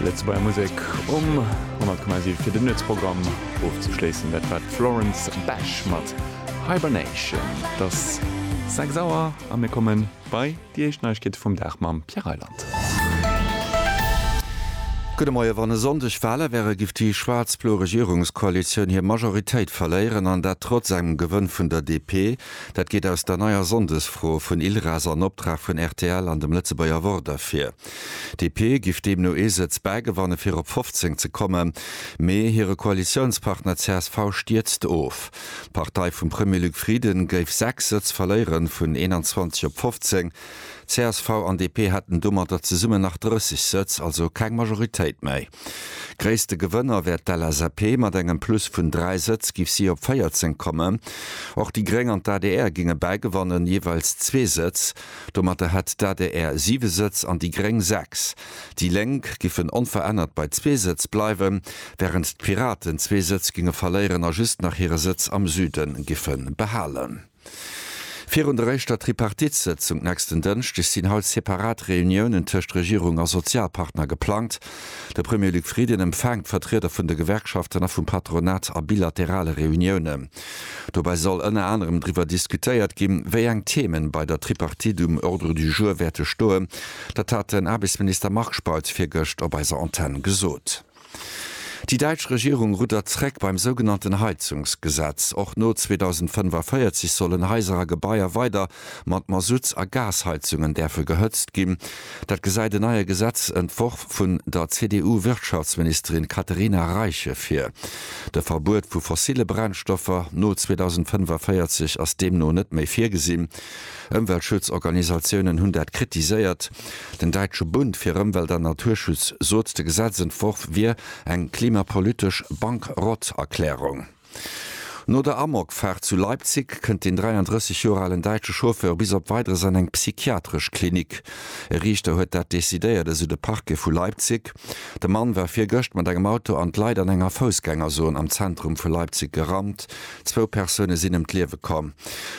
Lëtzebuerger Musek um 10,7 fir den Nuetsprogramm ofzeschléissen. Dat war d'Florence Bash mat Hibernation. Et ass 6 Auer a mir komme bei déi éischt Neiegkeete vum Dag mam Pierre Reyland. Gudde Moie. Wann e Sonndeg Wale wäre giff déi schwaarz-blo Regierungskoalitioun hir Majoritéit verléieren, an dat trotz engem Gewënn vun der DP. Dat geet aus der neier Sonndesfro vun ILRAS an Optrag vun rtl an dem Lëtzebuerger Wort ervir. DP giff deemno ee Sëtz bägewanne fir op 15 ze kommen, mee hire Koalitiounspartner csv stierzt of. D'Partei vum Premier Luc Frieden géif 6 Sëtz verléiere vun 21 op 15. Csv an DP hätten domatter zesummen nach 30 Sëtz, also keng Majoritéit méi. Gréisste Gewënner wär d'LSAP, mat engem Plus vun 3 Sëtz géif si op 14 kommen. Och déi Gréng an d'ADR géinge bäigewannen, jeeweils zwee Sëtz. Domatter hätt d'ADR 7 Sëtz an déi Gréng 6. Déi Lénk géifen onverännert bei zwee Sëtz bleiwen, wärend d'Piraten zwee Sëtz géinge verléieren a just nach hire Sëtz am Süden géife behalen. Virun der éischter Tripartite-Sëtzung nächsten Dënschdeg sinn haut separat Reuniounen tëscht Regierung a Sozialpartner geplangt. De Premier Luc Frieden empfaangt d'Vertrieder vun de Gewerkschaften a vum Patronat a bilaterale Reuniounen. Dobäi soll ënner anerem driwwer diskutéiert ginn, wéi eng Themen bei der Tripartite um Ordre du jour wäerte stoen. Dat hat den Aarbechtsminister Marc Spautz virgëscht op eiser Antenn gesot. Déi däitsch Regierung ruddert zréck beim sougenannten Heizungsgesetz. Och no 2045 sollen Haiser a Gebaier weider mat Masutts a Gasheizungen däerfe gehëtzt ginn. Dat gesäit en neie Gesetzentworf vun der CDU-Wirtschaftsministerin Katerina Reiche vir. De Verbuet vu fossille Brennstoffer no 2045 ass deemno net méi virgesinn. Ëmweltschutzorganisatiounen hunn dat kritiséiert. Den Däitsche Bund fir Ëmwelt an Naturschutz sot, de Gesetzentworf wier eng klimapolitesch Bankrotterklärung. No der Amokfaart zu Leipzig kënnt den 33 Joer alen däitsche Chauffeur bis op Weideres an eng psychiatresch Klinik. E Riichter huet dat decidéiert, esou de Parquet vu Leipzig. De Mann war virgëscht mat engem Auto an d'Leit an enger Foussgängerzon am Zentrum vu Leipzig gerannt. Zwou Persoune sinn ëm d'Liewe komm.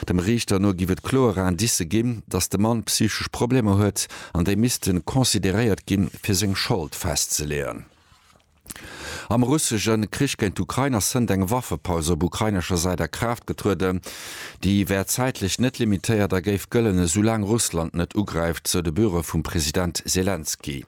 Dem Riichter no géif et kloer Indicë ginn, datt de Mann psychesch Problemer huet an déi misste consideréiert ginn, fir seng Schold festzeleeën. Am russesche Krich géint d'Ukrain ass Sënnt eng Waffepaus op ukrainescher Säit a Kraaft getrueden. Déi wär zäitlech net limitéiert a géif gëllen, esoulaang Russland net ugräift, sou de Büro vum President Selenskyj.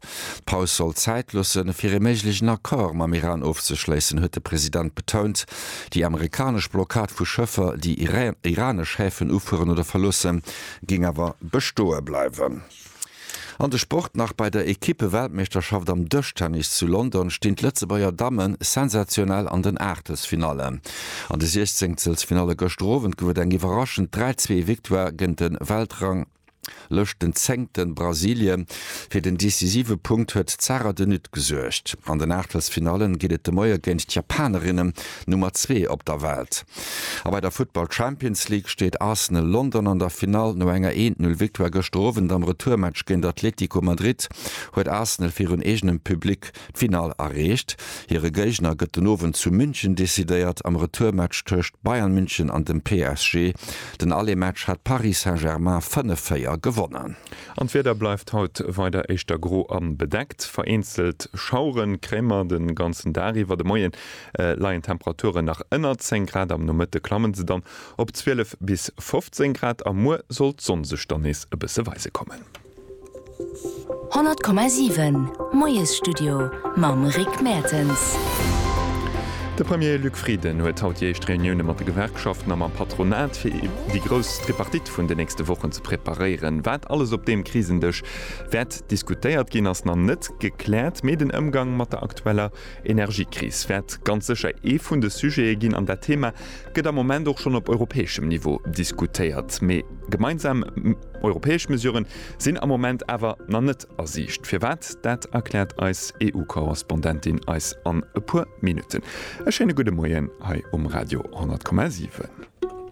D'Paus soll Zäit loosse fir ee méiglechen Accord mam Iran ofzeschléissen, huet de President betount. Déi amerikanesch Blockad vu Schëffer, déi iranesch Häfen ufueren oder verloossen, géing awer bestoe bleiwen. An de Sport nach, Bei der Ekippe-Weltmeeschterschaft am Dëschtennis zu London stinn d'Lëtzebuerger Damme sensationell an den Aachtelsfinallen. An de Siechzengselsfinalle gëschter Owend gouf et eng iwwerraschend 3-Zwee-Victoire géint de Weltrang. Lëscht den zéngten Brasilien. Fir den decisive Punkt huet d'Sara de Nutte gesuergt. An den Aachtelsfinallen geet et de Moie géint d'Japanerinnen, Nummer zwee op der Welt. A bei der Futtball Champions League steet Arsenal London an der Finall. No enger eent Null Victoire gëschter Owend am Retourmatch géint Atlético Madrid huet Arsenal virun eegenem Public D'Finall erreecht. Hire Géigner gëtt den Owend zu München decidéiert, am Retourmatch tëscht Bayern München an dem PSG. Den Aller-Match hat Paris Saint-Germain 5-4 gewonnen. An d'Wieder bleift haut weider éischter gro a bedeckt. Vereenzelt Schauere kréimer de ganzen Dag iwwer. De Moie leien d'Temperaturen nach ënner 10 Grad, am Nomëtte klamme se dann op 12 bis 15 Grad a muer soll d'Sonn sech dann nees e bësse weise kommen. 100,7 Moiesstudio mam Rick Mertens. De Premier Luc Frieden huet haut déi éischt Reunioune mat de Gewerkschaften a mam Patronat, fir déi grouss Tripartite vun den nächste Wochen ze preparéieren. Wat alles op deem Krisendësch wäert diskutéiert ginn, ass nach net gekläert, mee den Ëmgang mat der aktueller Energiekris wäert ganz sécher ee vun de Sujete ginn. An dat Thema gëtt am Moment och schonn op europäeschem Niveau diskutéiert, mee gemeinsam. Europäesch Mesuren sinn am Moment awer nach net a Siicht. Firwat, dat erkläert eis EU-Korrespondentin eis an e puer Minutten. E schéine gudde Moien hei um Radio 10,7.